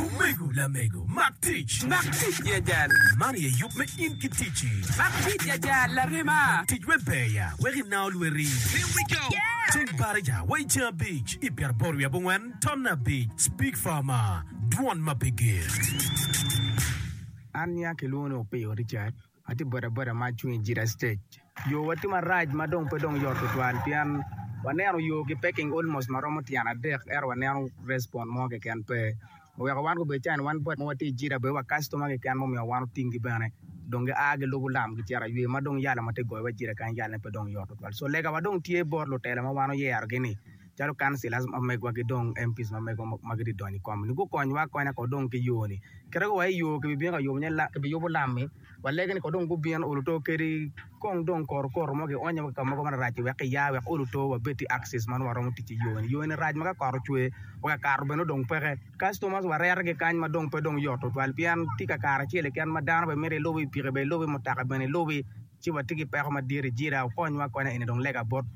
Omego lamego, mak tic. Mak tic jajal. Man aye yub me in ki ticci. Mak tic jajal larema. Tic wek ber ya, wek inao lweti. Lim wi co. Ceng Barija wa i ceng abic i pyeraboro wiye abongwen ton abic Speak farmer, dwon ma pe ger. An nia kilwongo ni Opiyo Richard. Atye bodaboda ma acung i Jita Stage. Yowa tye marac ma dong pe dong yot tutwal pien waneno yo ki packing almost ma romo tyen adek ento waneno respond mo keken pe. Oweko wan gubedo cani wan bot ma watye i Jita bedo wa customer keken ma omiyo wan otinggi bene dong gia gilubo lam gicito aywe ma dong yala ma tye goyowa i Jita kany yalane pe dong yot tutwal. So legawa dong tye bot lutela ma wan oyerogi ni Calo councillors mamegwa ki dong MPs mamegwa ma gitye donyo i kom ni gukonywa akonya ko dong ki yo ni. Kit ma waye yo kibibino ka yubo nye ki biyubo lam mi walegi ni ko dong gubin olu to kedi kong dong koru koru mo ki onyo wa ki ka mogo marac ci wek ki ya wek olu to wabed ki access ma nongo waromo tic ki yo ni. Yo ni rac ma ka kot ocwe weka kato bene dong peke. Customers warere ki kany ma dong pe dong yot tutwal pien tye ka kare acel keken ma dano bene mito ilubi i piki bene ilubi mutoka bene ilubi ci watye ki peko madit i jita okonywa akonya eni dong lega bot.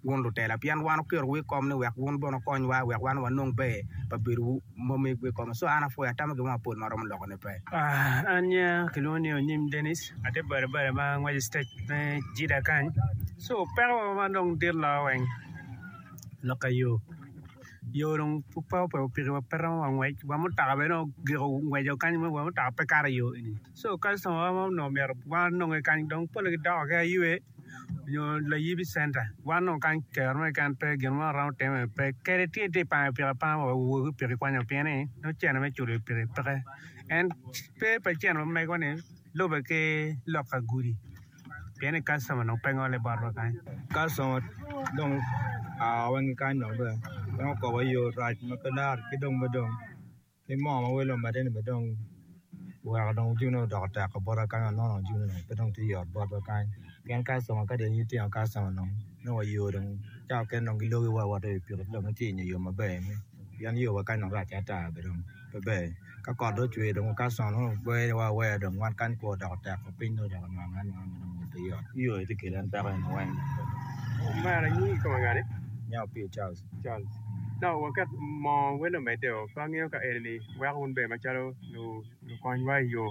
wun lutela, pien wan oketowu i kom ni wek wun bene wukonywa, wek wan wanong ber pa bedowu ma omegwu i kome. Co an apwoyo atamo gin mo mapol ma aromo lokone pe. An nyinga kilwongo ni Onyim Denis, atye bade bade ma angweco citec me Jida kany. Co peko ma dong dit loyo weng lok ka yo, yo dong pud pe ope opikiwa pe romo wa ngwec, wa mutoka bene dong ogiko ngweco kany ma wa mutoka pe kato i yo eni. Co kacitomawa ma onongo myero wanonge kany dong pole gidoko ki ayue. nyo layibi center wan nongo kany kero mo keken pe gin mo aromo timo iye pe kadi tye tye pango i piki apanga wa owogo ki piki kwanyo pien ni nongo cene me culo i piki peke en pe pa cen ma mego ni lube ki loka gudi pien ni kastoma nongo pe ngole bot wa kany kastoma dong aa wa ki kany dong bene en okobo aye yo rac ma pe laro ki dong me dong Ni moo ma wel omedde ni bene dong oweko dong ojune ni odoko teko bota kany wa nongo dong ojune ni pe dong tye yot botwa kany pien kastoma kadi aye tino kastoma dong nongo wayo dong cawa mukene dong gilogi wa wawoto i pikipiki dong watye inge yo maber ni pien yo wa kany dong race ata bene dong pe ber ka kot dong ocwer dong kastoma nongo gweyo wa awera dong wan kany kwoo odoko teko piny dong ocako nwange anwanga ma dong pe yot yo aye tye kelo en peko eni weng. Charles. Nongo waket moo wele omedde o, pe angeyo ka enini weko wun bene macalo lukonywa i yoo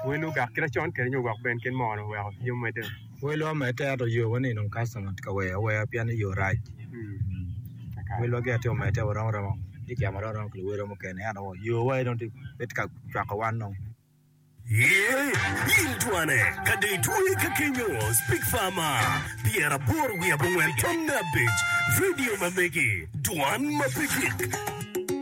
welu ogak kit acon kede nyo wek ben kit moo ni oweko pii omedde o. Welwa omedde ento yoo wa ni dong customer tye ka weyo aweya pien ni yoo rac. Welwa gin aye omedde o, waromo romo ki kicemo aromo romo ki luwotwa mukene ento yoo wa aye dong pe tye ka cwako wan dong. Ye, in twane, ka dong itweye ka kenyo, Speak Farma, pyera aboro wiye abongwen tam me abic, vidio ma megi, dwan ma pe gik.